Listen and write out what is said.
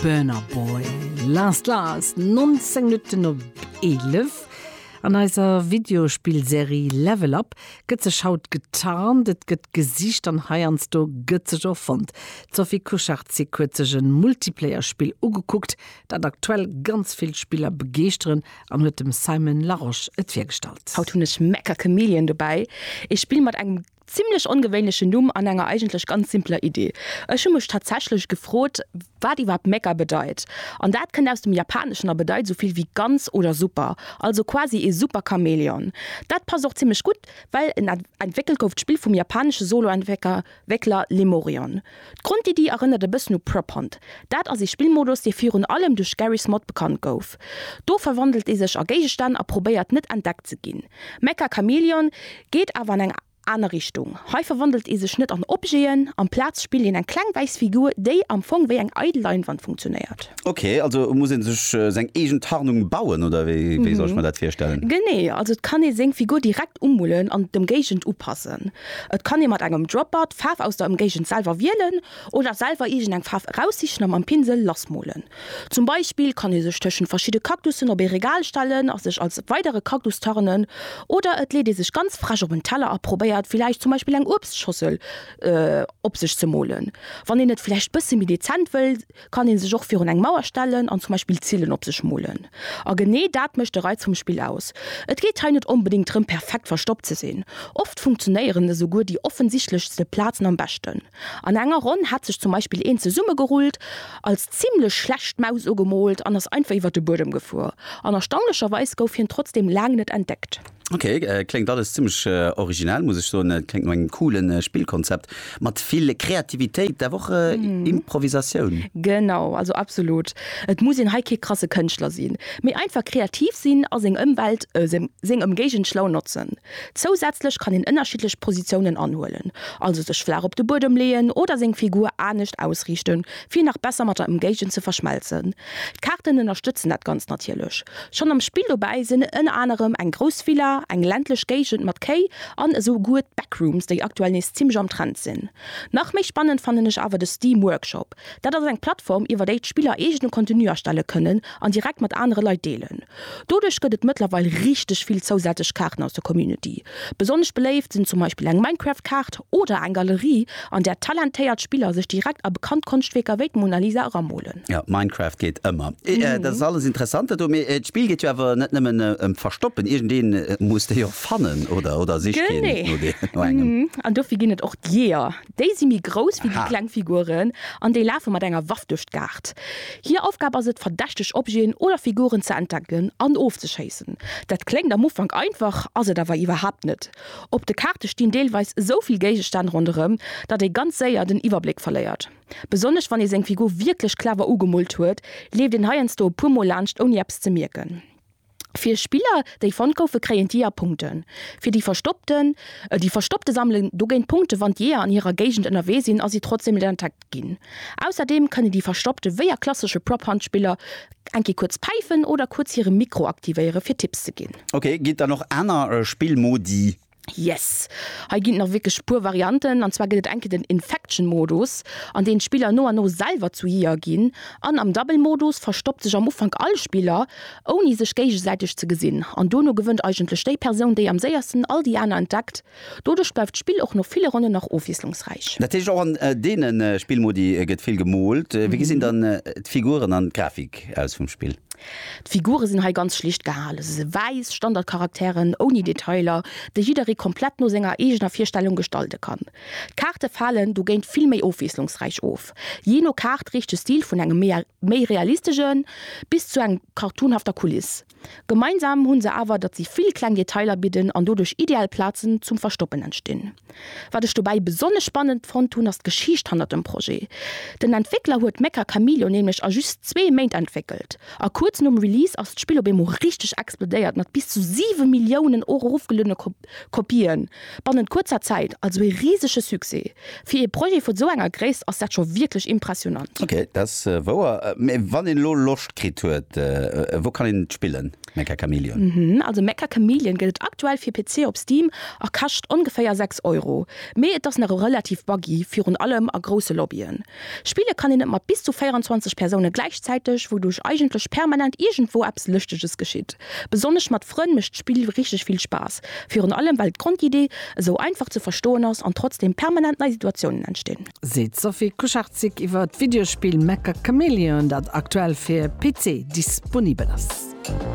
Burna Boy, Last Last, 19 Minutten op 11. An eiser Videospillserie Level Up gëtt sech haut getarnt, et gëtt gesicht an heiansdo gëtt sech och fonnt. D'Sophie Kucharczyk huet sech e Multiplayer-Spill ugekuckt, dat aktuell ganz vill Spiller begeeschteren an huet dem Simon Larosche et virgestallt. Haut hunn ech Mecha Chameleon dobäi, ee Spill mat engem Zimlech ongewéinlechen Numm an enger eigentlech ganz simpeler Idee. Ech hu mech tatsächlech gefrot, wat iwwerhaapt Meka bedeit. An dat kënnt aus dem Japaneschen a bedeit esou vill wéi ganz oder super. Also quasi ee Super-Chamäleon. Dat passt och zimlech gutt, well en entwéckelt gouf, d'Spill vum japanesche Solo-Entwéckler Lemurion. D'Grondiddi erënnert e bëssen u Prop Hunt. Dat ass ee Spillmodus, dee virun allem duerch Garry's Mod bekannt gouf. Do verwandelt ee sech a Géigestänn a probéiert net entdeckt ze ginn. Mecha Chameleon geet awer an eng aner Richtung. Hei verwandelt ee sech net an Objeten, amplaz spillt een eng kleng wäiss Figur, déi am Fong wéi eng eidel Leinwand funktionéiert. Ok, also muss ee sech seng eegen Tarnung bauen, oder wéi soll ech mer dat virstellen? Genee, also et kann ee seng Figur direkt umullen an d'Ëmgéigend upassen. Et kann ee mat engem Dropper d'Faarf aus der Ëmgéigend selwer wielen oder selwer iergend eng Faarf eraussichen a mam Pinsel lassmolen. Zum Beispill kann ee sech tëschent verschidde Kaktussen op ee Regal stellen a sech als weidere Kaktus tarnen. Oder et leet ee sech ganz frech op en Teller a probéiert villäicht zum Beispill eng Uebstschossel op sech ze molen, wann een et villäicht bësse méi dezent wëll. kann een sech och virun eng Mauer stellen an zum Beispill Zilen op sech molen. A genee dat mécht de Reiz vum Spill aus. Et geet hei net onbedéngt drëm, perfekt verstoppt ze sinn. Oft funktionéieren esouguer déi offensichtlechste Plazen am beschten. An enger Ronn hat sech zum Beispill een zesummegerullt, als zimmlech schlecht Maus ugemoolt an ass einfach iwwer de Buedem gefuer. An erstaunlecherweis gouf hien trotzdeem laang net entdeckt. Ok, äh, kléngt alles zimmlech äh, originell, muss ech soen. Et kléngt no engem coolen äh, Spillkonzept mat vill Kreativitéit, awer och äh, mm. Improvisatioun. Genau, also absolut. Et muss een hei kee krasse Kënschtler sinn, mee einfach kreativ sinn a seng Ëmwelt, äh, seng Ëmgéigend schlau notzen. Zousätzlech kann een ënnerschiddlech Positiounen anhuelen, also sech flaach op de Buedem leeën oder seng Figur anescht ausriichten, fir nach besser mat der Emgéigend ze verschmelzen. D'Kaarten ënnerstëtzen dat Ganzt natierlech. Schonn am Spill dobäi sinn ënner anerem eng grouss Villa, eng ländlech Géigend mat Kéi an esou guer d'Backrooms, déi aktuell nees zimmlech am Trend sinn. Nach méi spannend fannen ech awer de Steam Workshop. Dat ass eng Plattform iwwer déi d'Spiller eegene Contenu erstelle kënnen an direkt mat anere Leit deelen. Doduerch gëtt et mëttlerweil richteg vill zousätzlech Kaarten aus der Community. Besonnesch beléift sinn zum Beispill eng Minecraft-Kaart oder eng Galerie, an där talentéiert Spiller sech direkt a bekannt Konschtwierker wéi d'Mona Lisa eramolen. Jo, Minecraft geet ëmmer. Dat ass alles interessant do, mee d'Spill geet jo awer net nëmmen ëm d'Verstoppen. Iergendee muss déi och fannen, oder? Oder sicht een no engem? Genee. An dofir ginn et och d'Jeeër, Déi si méi grouss wéi déi kleng Figuren an déi lafe mat enger Waff duerch d'Kaart. Hir Aufgab ass et, verdächteg Objeten oder Figuren ze entdecken an ofzeschéissen. Dat kléngt am Ufank einfach, ass et awer iwwerhaapt net. Op de Kaarte stinn deelweis esou vill Géigestänn ronderëm, datt ee ganz séier den Iwwerbléck verléiert. Besonnesch wann ee seng Figur wierklech clever ugemoolt huet, leeft een heiansdo e puer Mol laanscht ouni eppes ze mierken. Fir Spiller déi fonnt goufen kréien d'Jeeër Punkten. Fir déi verstoppten, déi verstoppte sammelen dogéint Punkten. Wann d'Jeeër an hirer Géigend ënnerwee sinn a si trotzdeem net entdeckt ginn. Ausserdeem kënnen déi verstoppte wéi a klassesche Prop Hunt Spiller eng Kéier kuerz päifen oder kuerz hire Mikro aktivéieren fir Tipps ze ginn. Ok, ginn et dann och aner Spillmodi? Yes! Hei ginn et nach wierklech e puer Varianten, an zwar gëtt et eng Kéier den Infection Modus, an deem d'Spiller no an no selwer zu Jeeër ginn, an am Double Modus verstoppt sech am Ufank all Spiller, ouni sech géigesäiteg ze gesinn, an dono gewënnt eigentlech déi Persoun, déi am séiersten all déi aner entdeckt. Doduerch bleift d'Spill och no ville Ronnen nach ofwiesslungsräich. Dat heescht, och an deene Spillmodi gëtt vill gemoolt. Wéi gesinn dann d'Figuren an d'Grafik aus vum Spill? D'Figure sinn hei ganz schlicht gehalen, se si wäiss Standardcharakteren ouni Detailer, déi jidderee komplett no senger eegener Virstellung gestalte kann. D'Kaarte falen dogéint vill méi ofwiesslungsräich of. Jee no Kaart reecht de Stil vun engem méi realistesche bis zu eng cartoonhafter Kuliss. Gemeinsam hu se awer, datt si vill kleng Detailer bidden an doduerch ideal Plazen zum Verstoppen entstinn. Wat ech dobäi besonnesch spannend fonnt hunn, ass d'Geschicht hannert dem Projet. Den Entwéckler huet Mecha Chameleon nämlech a just zwee Méint entwéckelt, a kuerz nom Release ass d'Spill op eemol richteg explodéiert mat bis zu siwe Milliounen erofgeluedene Kopië bannent kuerzer Zäit. Also ee risege Succès! Fir ee Projet vu sou enger Gréisst ass dat scho wierklech impressionant. Ok, dat ass wouer. Mee wann een elo Loscht kritt huet, wou kann een et spillen? Mecha Chameleon. Also Mecha Chameleon gëtt et aktuell fir PC op Steam a kascht ongeféier 6 Euro. Mee et ass nach e relativ buggy, virun allem a grousse Lobbyen. Spille kann een et mat bis zu 24 Persoune gläichzäiteg, wouduerch eigentlech permanent iergendwou eppes Lëschteges geschitt. Besonnesch mat Frënn mécht d'Spill richteg vill Spaass, virun allem well d'Grondidee esou einfach ze verstoen ass an trotzdeem permanent nei Situatiounen entstinn. Seet d'Sophie Kucharczyk iwwer d'Videospill Mecha Chameleon, dat aktuell fir PC disponibel ass.